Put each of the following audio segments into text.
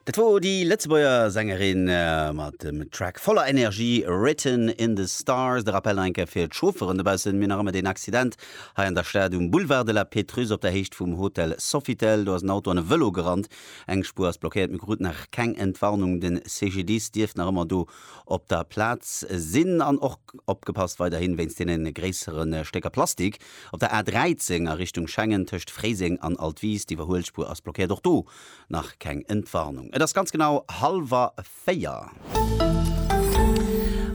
Dat wor déi Lëtzebuerger Sängerin mat dem Track voller Energie Written in the Stars. De Rappel nach eng Kéier fir d'Chaufferen dobaussen, Mir nach ëmmer deen Accident hei an der Stad um Boulevard de la Pétrusse op der Héicht vum Hotel Sofitel. Do ass en Auto an e Vëlo gerannt. Eng Spuer ass blockéiert. Mir kruten nach keng Entwarnung. De CGDIS dierft nach ëmmer do op der Plaz sinn. An och opgepasst weiderhi wéinst deene gréissere Stécker Plastik, Op der A13 a Richtung Schengen tëscht Fréiseng an Altwis, d'Iwwerhuelspuer ass blockéiert, och do nach keng Entwarnung. Et ass ganz genau hallwer véier.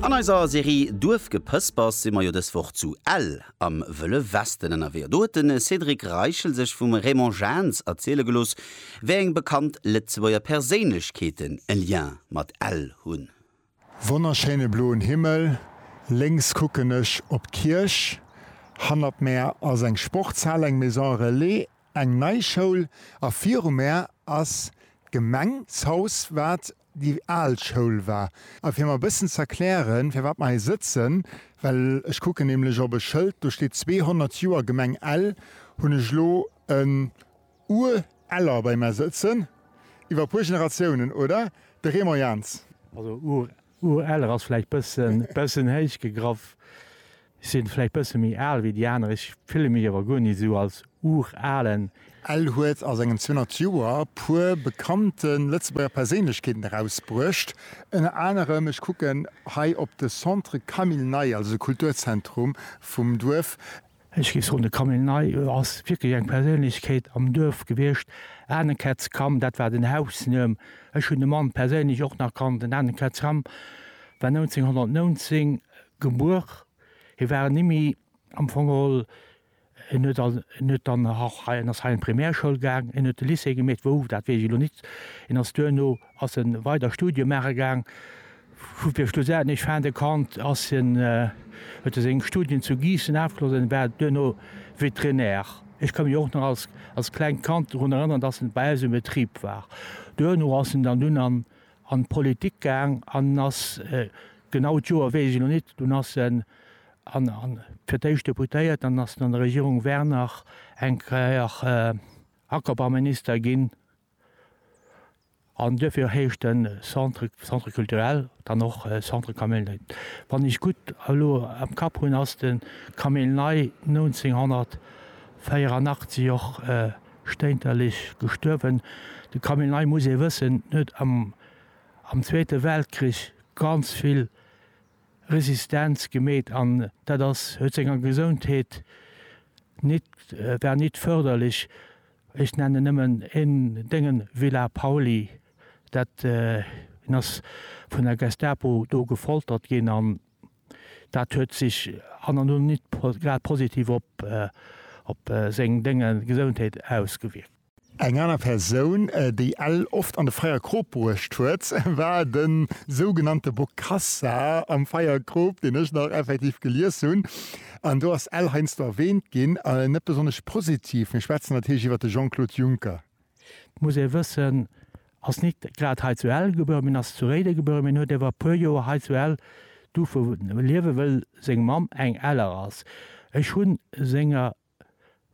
An eiser Serie Duerfgepëspers si mer jo dës Woch zu Ell am Wëlle Westen ënnerwee. Do huet de Cédric Reichel sech vum Raymond Jaentz erziele gelooss, wéi eng bekannt Lëtzebuerger Perséinlechkeeten e Lien mat Ell hunn. Wonnerschéine bloen Himmel, lénks kucken ech op d'Kierch, hannert mär ass eng Sportshal, eng Maison Relais, eng nei Schoul a viru mär ass d'Gemengshaus, wat déi al Schoul war. A fir mer bëssen z'erklären, firwat mer hei sëtzen, well ech kucken nämlech op e Schëld, do steet 200 Joer Gemeng Ell, hunn ech elo e. Ur eller bei mer sëtzen, iwwer puer Generatiounen, oder? De Raymond Jaentz. Also Ur Ur eller ass vläicht bëssen bëssen héich gegraff. Ech sinn vläicht bësse méi al wéi déi aner. Ech fille mech awer guer ni sou als Uralen. Ell huet a sengen 200 Joer puer bekannte Lëtzebuerger Perséinlechkeeten erausbruecht. Ënner anerem, ech kucken hei op de Centre Camille Ney, also de Kulturzentrum vum Duerf, Ech géif soen, de Camille Ney ass wierklech eng Perséinlechkeet am Duerf gewiescht. Anekätz Cam, dat war den Hausnuem. Ech hunn de Mann perséinlech och nach kannt. Den Anekätz Cam war 1919 gebuer. Hie war en Immi am Fong geholl. En huet an, en huet dann nach hei, en ass hei an d'Primärschoul gaang, en huet de Lycée gemeet, wou, dat weess ech elo nit. En ass duerno Ass en weider Studie maache gaang, vu fir schlussendlech fin de compte ass en, huet e seng Studien zu Giessen afgeschloss an war duerno Vétérinaire. Ech ka mech och nach als als klengt Kand drun erënneren, dass en bei eis um Betrib war. Duerno ass en dann dunn an an d'Politik gaang an en ass, genau d'Joer weess ech elo nit, dunn ass en an an fir d'éischt Deputéiert an ass an der Regierung Werner eng Kéier Ackerbauminister ginn. An duerfir heescht den Centre Centre culturel dann och Centre Camille Ney. Wann ech gutt elo am Kapp hunn, ass de Camille Ney 1984 och stéinterlech gestuerwen. De Camille Ney, muss ee wëssen, huet am am Zweete Weltkrich ganz vill Resistenz gemeet an dat ass huet senger Gesondheet nit war nit förderlech. Ech nennen nëmmen een Déngen, Villa Pauly. Dat, hien ass vun der Gestapo do gefoltert ginn an dat huet sech an an no nit grad positiv op op seng Dénge Gesondheet ausgewierkt. Eng aner Persoun, déi Ell oft an de Feierkrop bruecht huet, war de sougenannte Bokassa am Feierkrop, deen ech nach effektiv gelies hunn. An do ass Ell heiansdo erwähnt ginn, net besonnesch positiv. Mir schwätzen natierlech iwwert de Jean-Claude Juncker. Et muss ee wëssen, ass nit grad hei zu Ell gebuer, mee ass zu Réiden gebuer, mee huet ewer e puer Joer hei zu Ell duerfe liewen, wëll seng Mamm eng Eller ass. Ech hunn senger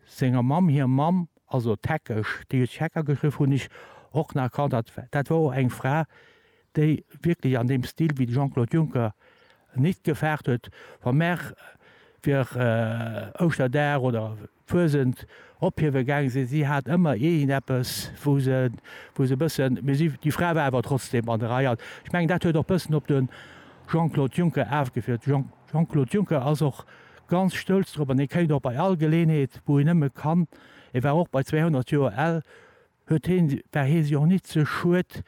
senger Mamm hir Mamm, also d'Heckesch, déi huet sech Hecker geschriww, hunn ech och nach erkannt, dat, dat war och eng Fra, déi wierklech an deem Stil wéi de Jean-Claude Juncker nit gefaart huet, wa mer fir Ouschterdag oder Fuesent ophiewe gaange sinn, si hat ëmmer iergendeppes, wou se, wou se e bëssen, mee si, déi Fra war awer trotzdem an der Rei. An ech mengen, dat huet och e bëssen op de Jean-Claude Juncker afgefiert. Jean-Claude Juncker ass och ganz stolz drop an hie kéint och bei all Geleenheet wou hien nëmme kann, e war och bei 200 Joer al, huet hie, war hie sech och nit ze schued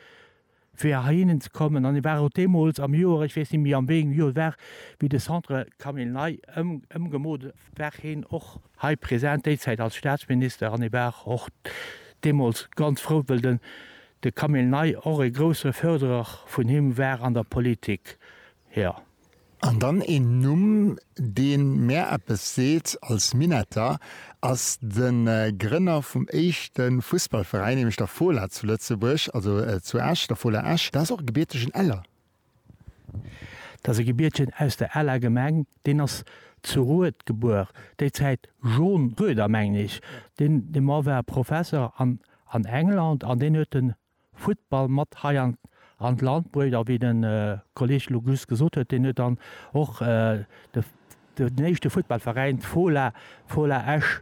fir heihinnen ze kommen an hie war och deemools am Joer, ech weess nit méi am wéiengem Joer et war, wéi de Centre Camille Ney ëmgemoolt war hien och hei present, déizäit als Staatsminister an hie war och deemools ganz frou well den de Camille Ney och e grousse Fërderer vun him war an der Politik, jo. An dann een Numm, dee mär eppes seet als Minetter, ass de Grënner vum éischte Fussballveräin, nämlech der Fola zu Lëtzebuerg, also zu Esch, der Fola Esch. Dat ass och e gebiertegen Eller. Dat ass e Gebiertegen aus der Eller Gemeng. Deen ass zu Rued gebuer, déi Zäit John Rueder, mengen ech. Dee Mann war Professer an England an deen huet den Futtball mat hei an an d'Land bruecht. A wéi de Kolleg elo just gesot huet, deen huet dann och de den éischte Futtballveräin, d'Fola, Fola Esch,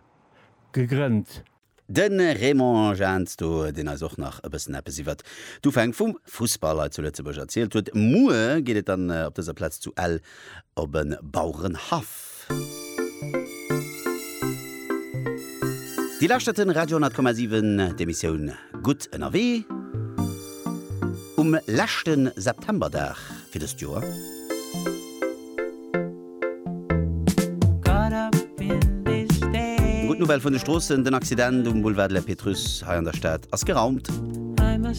gegrënnt. De Raymond Jahnsto, deen eis och nach e bëssen eppes iwwert d'Ufäng vum Fussball hei zu Lëtzebuerg erzielt huet. Muer geet et dann op dëser Plaz zu Ell op e Bauerenhaff. Déi lauschterte Radio 10,7, d'Emissioun Gutt ënnerwee um leschte Septemberdag fir dëst Joer. Gutt Nouvelle vun de Stroossen, Den Accident um Boulevard de la Pétrusse hei an der Stad ass geraumt.